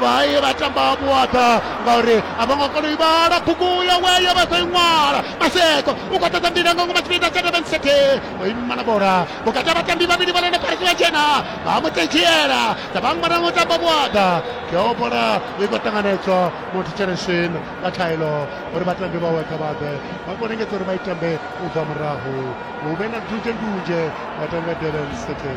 vhaye vha tamba vhuaḓa ngauri a vho ngo kona u ivhala bugu ya weyo vha sa i ṅwala maseko u khou ṱoḓa mbila nga ngomu tshipida tsha durban city o ima na bola vhukati ha vhatambi vhavhili vha lone parisi vha dzhena vha mu tedzhiela dza vha ṅwana ngo tamba vhuaḓa yo bola i khou ṱanganedzwa motho tsheneshwin nga thaelo uri vhatambi vhawe kha vhaḓe vha khou lingedza uri vha i tambe u bva murahu hu vhe na ndunzhendunzhe vhatambi vha durban city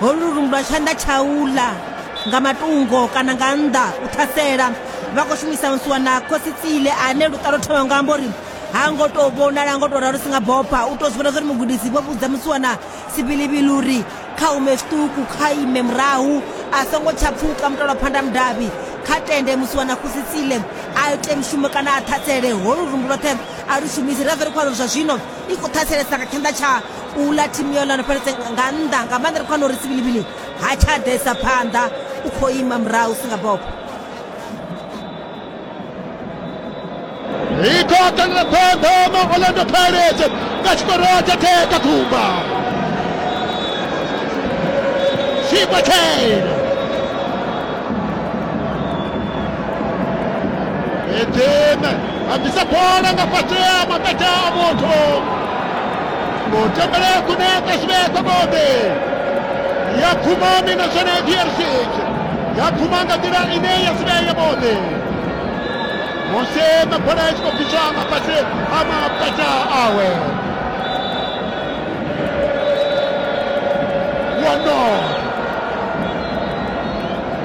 holu lungu lwa tshanḓa tshaula nga matungo kana nga nnḓa u ṱhasela vha khou shumisa nsuwa na khosi tsile ane luṱalo thoma nga amba uri ha ngo tou vhonala ngo tou ralo si nga bopha u tou zwi vhona zwauri mugudisi vho vhudza musiwana sibilibili uri kha ume zwiṱuku kha ime murahu a songo tsha pfuka mutalo phanda mudavhi kha tende musiwana khosi tsile a ite mushumo kana a ṱhasele holu lungu lwoṱhe a lu shumisi ra vha ri khou amba zwa zwino i khou ṱhaselesa nga tshanḓa tsha u ḽa thimu yo lano fheletse nga nnḓa nga maanḓa ri khou wana uri sibilibili ha tsha ḓesa phanḓa u khou ima murahu si nga bobo ikhokanela phanḓa ma orlando pirates nga tshikoro tsha theka khumba Super Kane. Edema. a bvisa bola nga fhasi ha maṱaḓa a muthu mutembele kune ka zwi vhea khobobe ya pfuma mina zwone drc ya pfuma nga nḓila ine ya si vhea yavhuḓi musi mabola a tshi khou bviswa nga fhasi ha maṱaḓa awe wano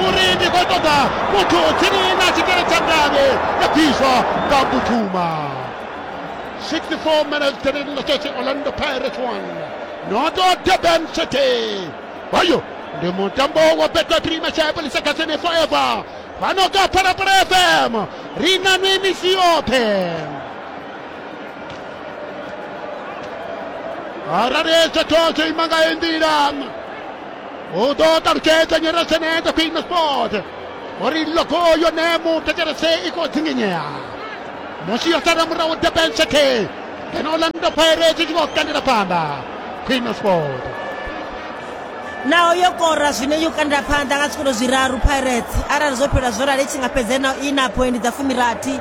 Muri ndi khou ṱoḓa muthu tsini na tshikele tsha ngavhe ya bviswa nga butuma 64 minutes tene nga tshetshi orlando pirates 1 noto durban city hoyo ndi mutambo wa betway premier chapo lisakasene forever fhano ka phalaphala fm ri na nwi misi yoṱhe arali zwoṱhe zwo ima nga yo nḓila O dod ar ged yn yr asened y pyn ys bod. O'r un logo i o nemu gyda'r ase i god zinginia. Mosi at ar ymraw y dybel sy'n te. Yn ôl yn y pere sy'n gwybod gan yr apanda. Pyn ys bod. Naho yo kora zwine yo kanda phanḓa nga tshikolo zwiraru Pirates arali zwo fhela zwo rali i tshi nga fhedza na i na phoindi dza fumirathi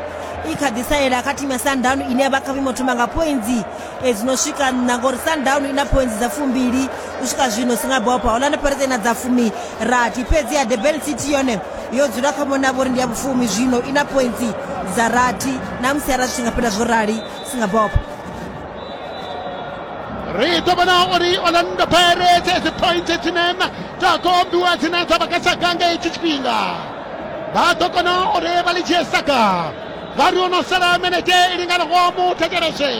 i kha ḓi salela kha thimu ya Sundowns ine ya vha kha vhuimo thoma nga phoindi e dzi no swika nṋa ngori sundown i na phointsi dza fumbili u swika zwino singapore orlando pirates ina dza fumi rathi fhedzi ya durban city yone yo dzula kha mona vhori ndi ya vhufumi zwino i na pointsi dza rathi na musi ara zwi nga fhela zwo rali singapore ri ḓo vhona uri orlando pirates dzi pointsi dzine na dza kombiwa dzine dza vha kha saga nga hetshi tshifhinga vha ḓo kona uri vha ḽi dzhie saga Vhari o no sala minete i linganaho mu thetshelese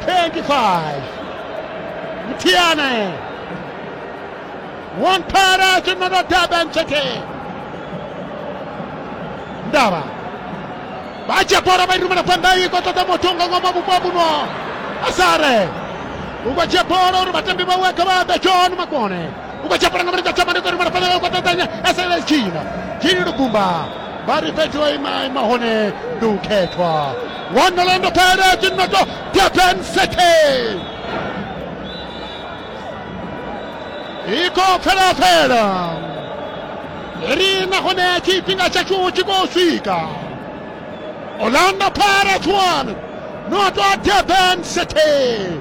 25 Mthiane Wontara Tshinono Durban City Ndaba vha dzhia bola vha i rumela phanḓa i khou ṱoḓa muthu nga ngomu vhupo vhuno asare u khou dzhia bola uri vhatambi vhawe kha vha ḓe john makone u khou dzhia bola nga mulenzhe tshama ndi khou rumela phanḓa i khou ṱoḓanya asare tshina tshini lugumba vha ri fhedzi o ima ima hone ndi u khethwa wonolando pele dzinnoto durban city i khou pfelapfela ri nahone tshifhinga tshashu tshi khou swika orlando pirates 1 noto durban city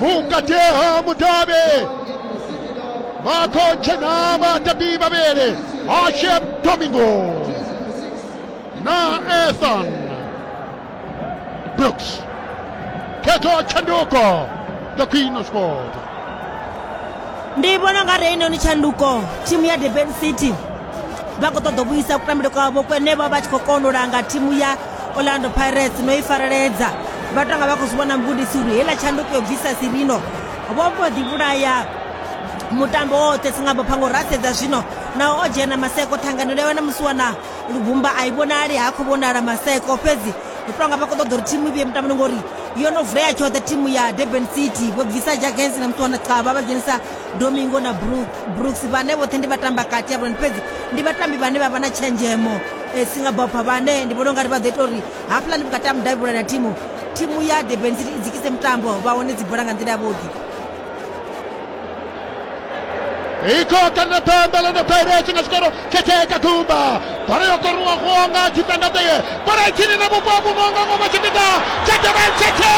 mukateha mutabe makonche na matabi babele ashem domingo na ethan brooks keto chanduko the queen of sport ndi vhona nga reino ni tshanduko thimu ya durban city vha khou ṱoḓa u vhuisa kutambele kwavho kwenevha vha tshi khou kona u langa thimu ya orlando pirates no i fareledza vha tonga vha khou zwi vhona mugudisi uri heiḽa tshanduko yo bvisa sirino vho mbo ḓi vhulaya mutambo woṱhe singabo phango ra sedza zwino naho o dzhena maseko ṱhanganelo yawe na musi wana lubumba a i vhonali ha khou vhonala maseko fhedzi ri tonga vha khou ṱoḓa uri thimu i vhuye mutamboni ngori yo no vulea tshoṱhe thimu ya durban city vho bvisa jagens na musi wana xaba vha dzhenisa domingo na brooks vhane vhoṱhe ndi vhatambi kati ya vhulani fhedzi ndi vhatambi vhane vha vha na tshenzhemo E, Singapore vhane ndi vhona ungari vha ḓo ita uri hafhaḽani vhukati ha mudavhi vhulani ha thimu thimu ya durban city i dzikise mutambo vha wane dzi bola nga nḓila yavhuḓi ikhokha na pembe ḽone pirates nga tshikoro khethe ka ḓumba bola yo koruwaho nga tshipendadeye bola itshini na vhupo vhuno nga ngoma tshipiḓa tsha durban city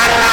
ara